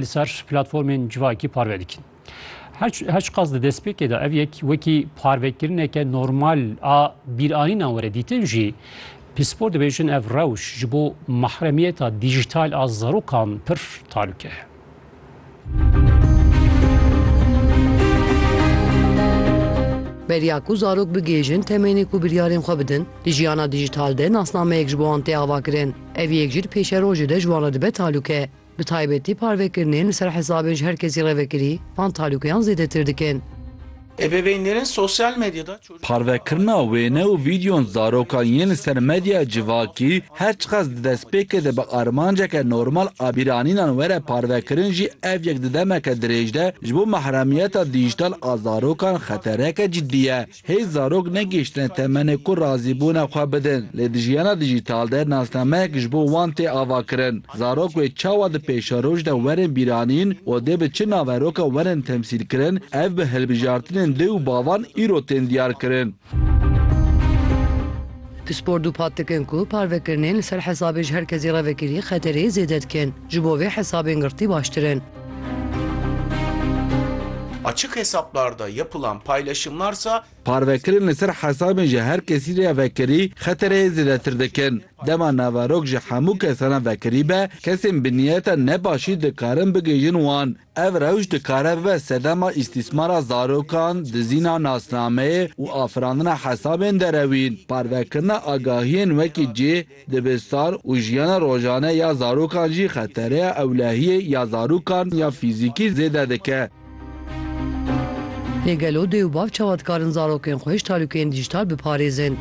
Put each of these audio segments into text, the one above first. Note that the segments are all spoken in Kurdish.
li ser platformên civakî parve dikin. Her çiqas di destpêkê de ev yek wekî parvekirineke normal a bîranînan were dîtin jî, pispor dibêjin ev rewş ji bo mahremiyeta dîjîtal a zarokan pir talûke heye. Beriya ku zarok bigihêjin temênê ku biryarên xwe bidin, di jiyana dîjîtal de nasnameyek ji bo wan tê avakirin. Ev yek jî di pêşerojê de ji wan re dibe talûke. Bi taybetî parvekirinê li ser hesabên ji her kesî re vekirî van talûkeyan zêdetir dikin. Ebeveynlerên sosyal medyada çocuklarine Parvekirina wêne û vîdeoyan zarokan yên li ser medyaya civakî her çiqas di destpêkê de bi armanceke normal a bîranînan were parvekirin jî ev yek di demeke dirêj de ji bo mehremiyeta dîjîtal a zarokan xetereke cidî ye. Hêj zarok negihiştine temenê ku razîbûna xwe bidin, lê di jiyana dijîtal de nasnameyek ji bo wan tê avakirin. Zarok wê çawa di pêşeroj de werin bîranîn û dê bi çi naverokan werin temsîlkirin, ev bi hilbijartinên dê û bavan îro tên diyarkirin. Pispor dûpat dikin ku parvekirinên li ser hesabê ji her kesî re vekirî xeterê zêde dikin. Ji bo vê hesabên girtî baştir in. Açık hesaplarda yapılan paylaşımlarsa, Parvekirin li ser hesabên ji her kesî re ya vekirî xetereyê zêdetir dikin. Dema naverok ji hemû kesan re vekirî be, kesên bi niyeta ne başî dikarin bigihîjin wan. Ev rewş dikare bibe sedema îstîsmara zarokan, dizîna nasnameyê û afirandina hesabên derewîn. Parvekirina agahiyên wekî cih, Dibistan û jiyana rojane ya zarokan jî xetereya ewlehiyê ya zarokan ya fîzîkî zêde dike. Lê gelo dê û bav çawa dikarin zarokên xwe ji talûkeyên dîjîtal biparêzin?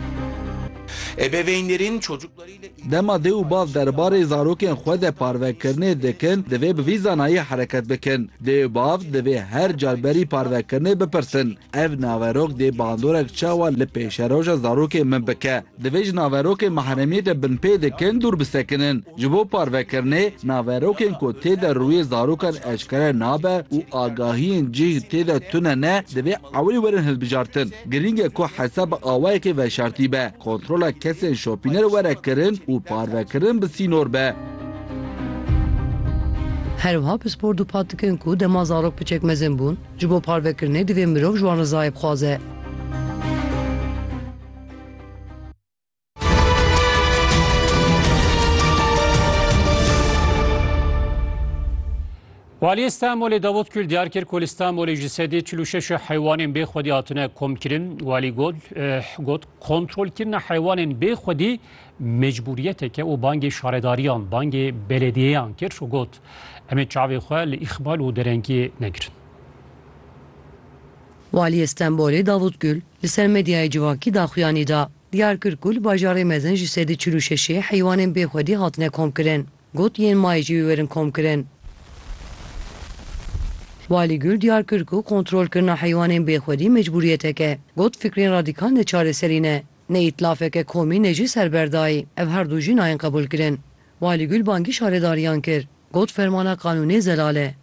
Ebeveynlerin çocuklarıyla ilgili. Dema dê û bav derbarê zarokên xwe de parvekirinê dikin, divê bi vî zanayî hereket bikin. Dê û bav divê her car berî parvekirinê bipirsin, Ev naverok dê bandorek çawa li pêşeroja zarokên min bike? Divê ji naverokên mahremiyê de binpê dikin dûr bisekinin. Ji bo parvekirinê, naverokên ku tê de rûyê zarokan eşkere nabe û agahiyên cih tê de tune ne, divê ewilî werin hilbijartin. Girîng e ku hesa bi awayekê veşartî be, kontrola kesên şopîner were kirin û parvekirin bi sînor be. Her wiha pispor dûpat dikin ku dema zarok piçek mezin bûn, ji bo parvekirinê divê mirov ji wan rizayê bixwaze. Waliyê Stenbolê Davut Kül diyar kir ku li Stenbolê ji sedê çil û şeş heywanên bê xwedî hatine komkirin. Walî got eh, got kontrolkirina heywanên bê xwedî mecbûriyeteke û bangê şaredariyan, bangê belediyeyan kir û got em ê çavê xwe li îxbal û derengiyê negirin. Waliyê Stenbolê Davut Gul li ser medyaya civakî daxuyanî da. Diyar kir ku li bajarê mezin ji sedî çil û şeşê heywanên bê xwedî hatine komkirin. Got yên mayê jî biberin komkirin. Walî Gul diyar kir ku kontrolkirina heywanên bê xwedî mecbûriyetek e. Got fikrên radîkal ne çareserî ne, ne îtlafeke komî ne jî serberdayî. Ev her du jî nayên qebûlkirin. Walî Gul bangî şaredariyan kir, got fermana qanûnê zelal e.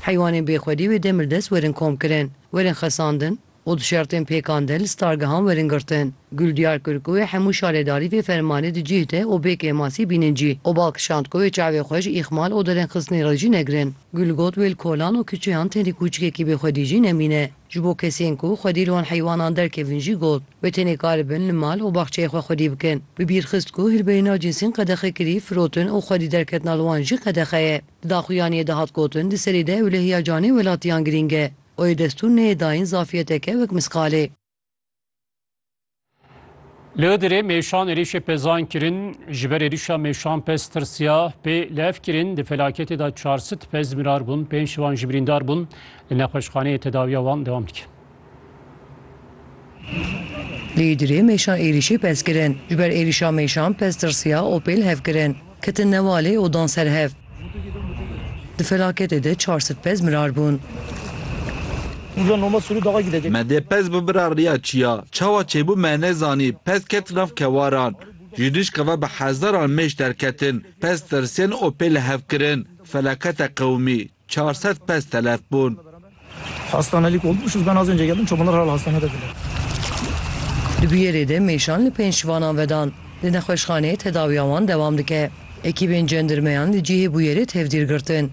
Heywanên bêxwedî wê demir dest werin komkirin, werin xesandin û di şertên pêkande li stargehan werin girtin. Gul diyar kir ku wê hemû şaredarî vê fermanê di cîh de û bê kêmasî bînin cî û bal kişand ku wê çavê xwe ji îxmal û derengxistinê re jî negirin. Gul got wê li kolan û kiçeyan tenê kûçikekî bêxwedî jî nemîne. Ji bo kesên ku xwedî li wan heywanan derkevin jî got, wê tenê karibin li mal û baxçeyê xwe xwedî bikin. Bi bîr xist ku hilberî nav cinsên qedexekirî, firotin û xwedî derketina li wan jî qedexe ye. Di daxuyaniyê de hat gotin di serî de ewlehiya canê welatiyan girîng e. Oyê destûr neyê dayîn zafiyeteke wek misqalê. Li Idirê mêşan êrişê pezan kirin, ji ber êrişa mêşan pez tirsiya pê li ev kirin di felaketê de çar sit pez mirar bûn, pênc ji wan jî birîndar bûn. Li nexweşxaneyê tedawiya wan dewam dike. Li Idirê mêşan êrişê pez kirin, ji ber êrişa mêşan pez tirsiya û pê li hev kirin. Ketin newalê û dan ser hev. Di felaketê de çar sed pez mirar bûn. Me dê pez bimira riya çi ya? Çawa çêbû me nezanî, pez ket nav kewaran. Ji dişka ve bi hezaran mêş derketin. Pez tirsên û pê li hev kirin. Felakete qewimî. Çar sed pez telef bûn. Hastanelik olmuş uz ben az önce geldim çobanlar hala hastanededirler. Di bûyerê de mêşan li pênc şivanan vedan. Di nexweşxaneyê tedawiya wan dewam dike. Ekîbên cendirmeyan li cihê bûyerê tevdîr girtin.